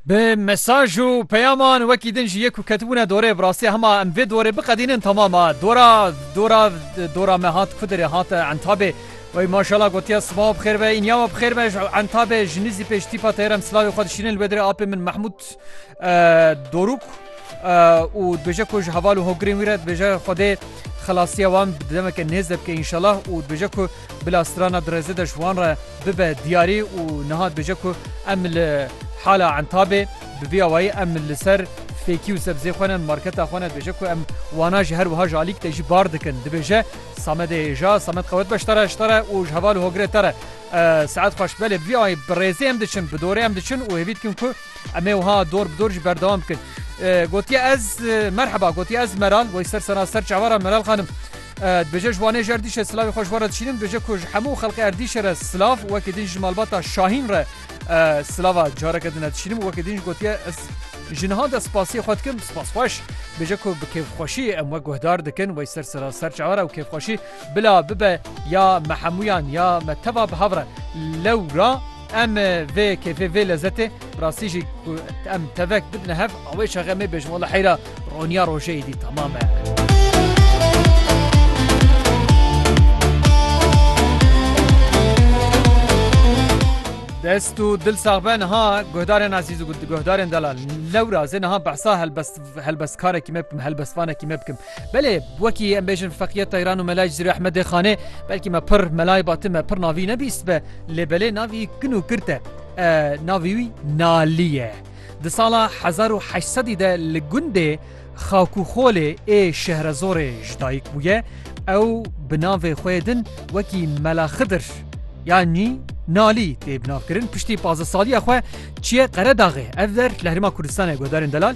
Bi mesaj û peyaman wekî din jî yek û ketibûne dorê bi rastî hema em vê dorê biqedînin temam a. Dora dora dora me hat Kudirê hat Entabê. Wey maşala gotiya siba we bixêr be, îniya we bixêr be ji Entabê ji nizî pêş tîpa teyran silavê xwe dişînin li wê dirê apê min Mehmûd. Doruk û dibêje ku ji heval û hogirên wî re dibêje Xwedê xelasiya wan bi demeke nêz de bike înşelah û dibêje ku bila strana dirêzê de ji wan re bibe diyarî û niha dibêje ku em li hala Entabê bi vî awayî em li ser fêkî û sebzê xwe ne marketa xwe ne dibêje ku em wana jî her wiha ji alîk de jî bar dikin dibêje Samedê hêja Samed qewet be ji te re ji te re û ji heval û hogirê te re Saet xweş belê bi vî awayî bi rêzê em diçin bi dorê em diçin û hêvî dikin ku Em ê wiha dor bi dor jî berdewam bikin. Gotiye ez merheba gotiye ez Meral wey ser sena ser çavara Meral xanim. Dibêje ji wanê ji Erdîşê silavê xwe ji bo re dişînim dibêje ku ji hemû xelkê Erdîşê re silav wekî din ji malbata Şahîn re silava careke din re dişînim û wekî din jî gotiye ez ji niha de spasiyê xwe dikim spas xweş dibêje ku bi kêfxweşî em we guhdar dikin wey ser sera ser çawa re û kêfxweşî bila bibe ya me hemûyan ya me teva bi hev re lewra Em vê kêfê vê lezetê bi rastî jî ku em tevek bidine hev awê çaxê em ê bêjin wala heyra roniya rojê êdî temam e. Dest û dil sax be niha guhdarên ezîz û guhdarên delal lewra zê niha behsa helbestkarekî me bikim helbestvanekî me bikim. Belê, wekî em bêjin Feqîye Teyran û Melayê Cizîrê Ehmedê Xanê, belkî me pir Melayê Batî me pir navî nebîstbe, lê belê navî kin û kirt e. Navî wî Nalî ye. Di sala hezar û heşt sedî de li gundê Xakûxolê ê Şehrezorê ji dayik bûye. Ew bi navê xwe yê din wekî Mela Xidir yanî Nalî tê binavkirin. Piştî pazdeh saliya xwe çiye Qeredaxê. Ev der li Herêma Kurdistanê guhdarên delal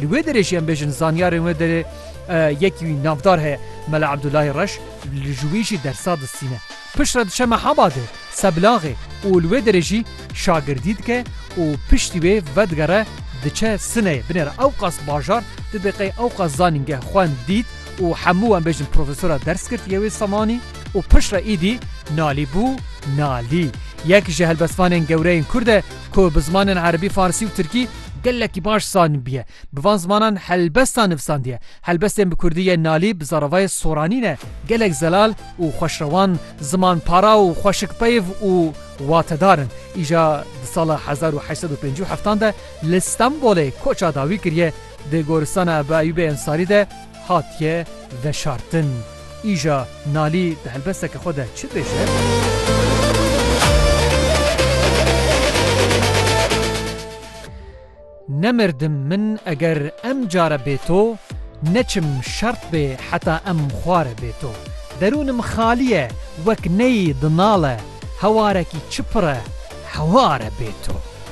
Li wê derê jî em bêjin zanyarên wê derê yekî wî navdar heye Mela Ebdulahî Reş li ji wî jî dersa distîne. Piştre diçe Mehabadê, Seblaxê û li wê derê jî şagirdî dike û piştî wê vedigere diçe Sineyê. Binêr ewqas bajar didê qey ewqas zanîngeh xwend, dît û hemû em bêjin profesora ders girt yê wê zemanî û piştre îdî nalî bû nalî. Yek ji helbestvanên gewre yên Kurd e ku bi zimanên Erebî, Farsî û Tirkî, Gelekî baş zanînbûye. Bi van zimanan helbesta nivîsandiye. Helbestên bi kurdî yên nalî bi zaravayê soranî ne. Gelek zelal û xweşrewan, zimanpara û xweşikpeyv û watedar in. Îja di sala hezar û heşt sed û pêncî û heftan de li Stenbolê koça dawî kiriye. Di goristana Ebu Eyûbê Ensarî de, Hatiye veşartin. Îja Nalî di helbesteke xwe de çi dibêje? Nemirdim min eger em care bê to, neçim şert bê heta em xware bê to. Derûnim xalî ye wek neyî dinale, hewarekî çi pir e heware bê to.